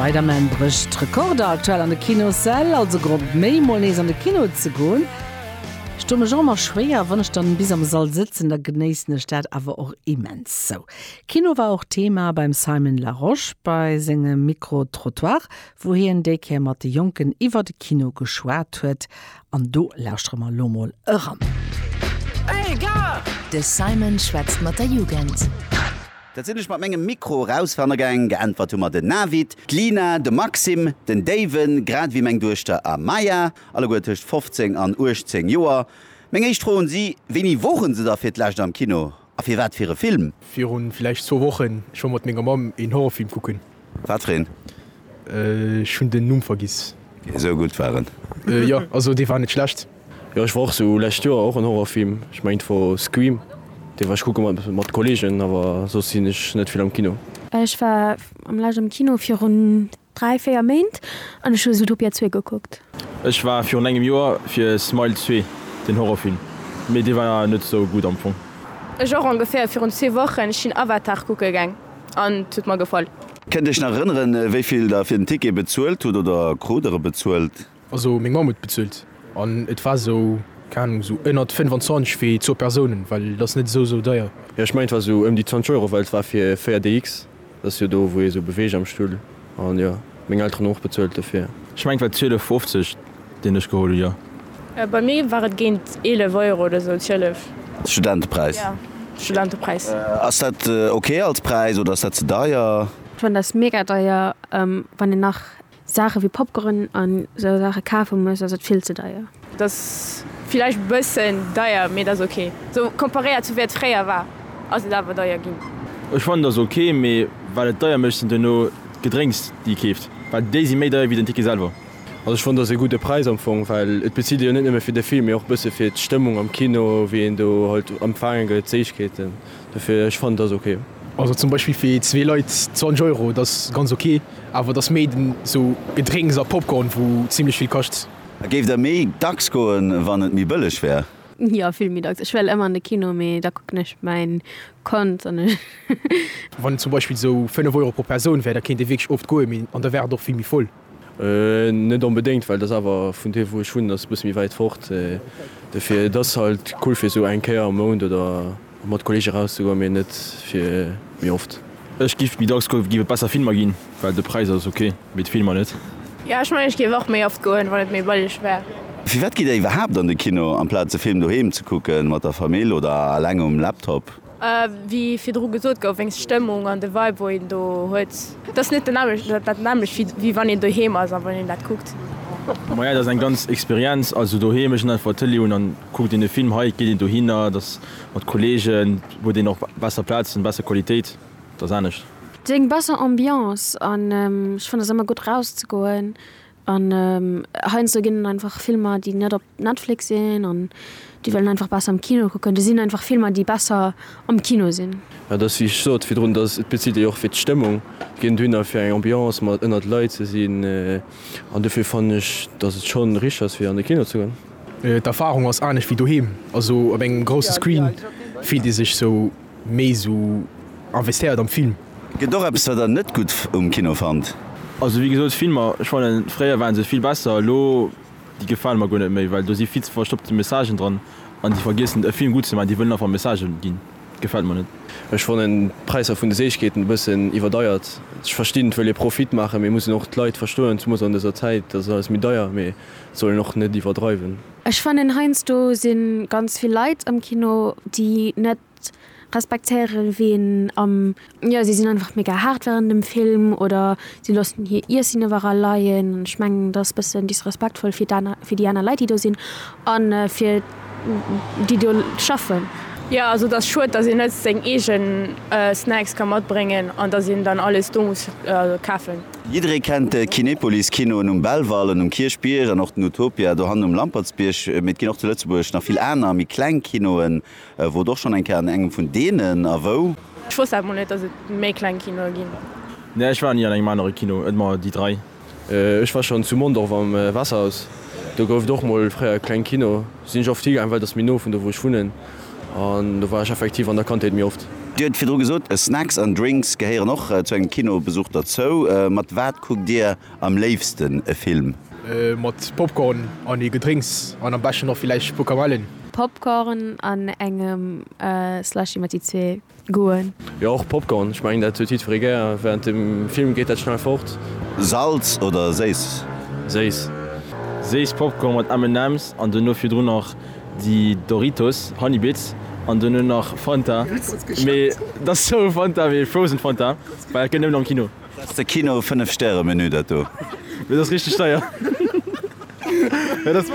Spider-Man brécht d'Rekorder aktuell an de Kinossäll, also Grond méi, mol nees an de Kino ze goen. Ech doe mech och ëmmer schwéier, wann ech dann bis am Sall sëtzen, da genéissen ech dat awer och immens. Sou, Kino war och Thema beim Simon Larosche bei sengem Micro-Trottoir, wou hien déi Kéier mat de Jonken iwwer de Kino geschwat huet. An do lauschtere mer elo mol eran. De Simon schwätzt mat der Jugend. Dat sinn ech mat mengem Mikro erausfannergaang, geäntwert hu mer den Navid, d'Lina, de Maxime, den Déiwen, grad ewéi meng Duechter Amaya, alleguer tëscht 15 an 18 Joer. Meng éischt Fro un si, Wéini wore se da fir d'lescht am Kino a fir wat fir e Film? Viru villäicht zwou Wochen. Ech wor mat menger Mamm een Horrorfilm kucken. Wat fir een? Ech hunn den Numm vergiss. Esou gutt war en? Jo, also dee war net schlecht. Jo ech war och sou lescht Joer och en Horrorfilm, ech mengt wor Scream, dee war ech kucke mat mat Kollegen, awer soss sinn ech net vill am Kino. Ech war am lescht am Kino virun 3 4 Méint an ech hu Zootopia 2 gekuckt. Ech war virun engem Joer fir Smile 2 den Horrorfilm, mee dee war net sou gutt am Fong. Ech och ongeféier virun zwee Wochen, ech sinn Avatar kucke geng an et huet mer gefall. Kënnt iech nach erënneren wéivill der fir den Ticket bezuelt hutt oder krut der e bezuelt? Also meng Mamm huet bezuelt an et war esou, keng Ahnung, esou ënnert 25 fir zwou Persounen, well et ass net esou esou deier. Jo ech mengen et war esou ëm déi 20 Euro, well et war fir 4 DX, dat ass jo do wou ee sou beweegt am Stull an jo meng Elteren hu och bezuelt dofir. Ech mengen et war 12,50 deen ech geholl hu, jo. Bei mir war et géint 11 Euro oder esou, 12. Studentepräis. Jo Studentepräis. Ass dat ok als Präis oder ass dat ze deier? D'Wënn ass mega deier wann een nach. Saache wéi Popcorn an esou Saache kafe muss, ass et vill ze deier. Et ass villäicht e bëssen deier, mee et ass ok. Esou komparéiert zu wéi et fréier war, ass et awer deier ginn. Ech fannen et ass ok, mee wat et deier mécht sinn duerno d'Gedrénks déi ee keeft, well déi si méi deier wéi den Ticket selwer. Also ech fannen et ass ee gudde Präis am Fong, well et bezilt ee jo net nëmme fir de Film, mee och e bësse fir d'Stëmmung am Kino, wéi een do halt empfaange gëtt, d'Séichkeeten. Dofir ech fannen et ass ok. Also zum Beispill fir zwee Leit 20 Euro, dass ganz ok, awer dass méi den sou Gedrénks a Popcorn wou zimlech vill kascht. A géift der méi dacks goen wann et méi bëlleg wär? Jo vill méi dacks, ech well ëmmer an de Kino mee da kucken ech mäin Kont an ech. Wann et zum Beispill sou 5 Euro pro Persoun wär da kéint ee wierklech oft goen, mee an da wär et och vill méi voll. Net onbedéngt, well et ass awer vun do wou ech wunnen ass e bësse méi wäit fort. Dofir et ass halt cool fir esou eng Kéier am Mount oder mat Kolleege rauszegoen, mee net fir méi oft. Ech giff méi dacks goen, giff et besser Filmer ginn, well de Präis ass ok, mee d'Filmer net. Jo ech mengen ech géif och méi oft goen wann et méi bëlleg wär. Firwat gitt der iwwerhaapt an de Kino amplaz e Film doheem ze kucke mat der Famill oder alleng um Laptop? Wéi virdru gesot gouf, wéinst d'Stëmmung an de Vibe, wou een do huet, et ass net dat nämmlecht, wéi wann een doheem ass a wann een dat kuckt. Maja, et ass eng ganz Experienz. Also doheem, ech hunn einfach d'Tëlee un an kucke dee Film. Hei geet een dohinner, et ass mat Kolleegen, huet een och besser Plazen, besser Qualitéit, et ass anescht. Et ass eng besser Ambiance an ech fannen et ass ëmmer gutt erauszegoen. An heiansdo ginn et einfach Filmer, déi net op Netflix sinn an déi wëllen einfach besser am Kino kucken. Do sinn einfach Filmer, déi besser am Kino sinn. Et ass, wéi ech sot virdrun, dass et bezitt ee jo och fir d'Stëmmung. Et geet net duhinner, fir eng Ambiance mat ënnert Leit ze sinn. An dofir fannen ech, dass et schonn richteg ass, fir an de Kino ze goen. D'Erfarung ass anescht wéi doheem. Also op engem grousse Screen fillt ee sech sou méi esou investéiert am Film. Gëtt och eppes, wat der net gutt um Kino fannt? Also wéi gesot, Filmer, ech fannen, fréier waren se vill besser. Elo. Déi gefalen mer guer net méi, well do si vill ze verstoppte Messagen dran an déi vergiessen e Film gutt ze maachen, déi wëllen einfach Messagen ginn. Gefält mer net. Ech fannen d'Präisser vun de Séichkeeten e bëssen iwwerdeiert. Ech verstinn et wëll ee Profit maachen, mee mussen och d'Leit verstoen, zumools an dëser Zäit, dass et alles méi deier, mee et soll een och net iwwerdreiwen. Ech fannen heiansdo sinn ganz vill Leit am Kino déi net respektéieren ween am. Jo si sinn einfach mega haart während dem Film oder si loossen hir Iessen iwwerall leien an ech mengen dat ass bëssen disrespektvoll fir d'aner fir déi aner Leit déi do sinn an fir déi do schaffen. Jo also et ass schued dass een net seng eegen Snacks ka matbréngen an dass een dann alles do muss kafen. Jidderee kennt de Kinepolis Kinoen um Belval an um Kierchbierg an och den Utopia dohannen um Lampertsbierg, mee et ginn och zu Lëtzebuerg nach vill aner méi kleng Kinoen. E wor doch schon eng Kéier an engem vun deenen. A wou? Ech wosst dat mol net dass et méi kleng Kinoe ginn. Nee ech war ni an engem anere Kino et mer déi 3. Ech war schon zu Mondorf am Wasserhaus, do gouf et och mol fréier e kleng Kino, sinn ech oft higaang well et ass méi no vun do wou ech wunnen an do war ech effektiv an der Kandheet méi oft. Dir huet virdru gesot Snacks an Drinks gehéieren och zu engem Kinobesuch derzou. Mat wat kuckt Dir Am léifsten e Film. Mat Popcorn an ee Gedrénks an am beschten och villäicht e puer Kamellen. Popcorn an engem Slushy mat déi zwee Goûten. Jo och Popcorn, ech mengen dat huet jiddferee gär. Wärend dem Film geet dat schnell fort. Salz oder séiss? Séiss. Séiss Popcorn mat M&M's an dono virdrun nach déi Doritos Honey Bits an dono nach Fanta, mee et ass sou Fanta wéi Frozen Fanta, well dat gëtt nëmmen am Kino. Dass de Kino 5 Stäre Menü dat do. Et ass richteg deier.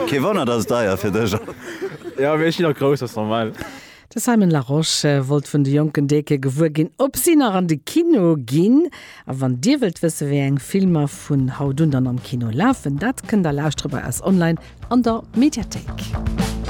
Kee Wonner dass et deier fir dech ass. Jo mee ech ginn och grouss, ass normal. De Simon Larosche wollt vun de jonken Deke gewuer ginn ob si nach an de Kino ginn. A wann dir wëllt wësse wéi eng Filmer vun haut un dann am Kino lafen, dat kënnt der lauschtere bei eis online an der Mediathéik.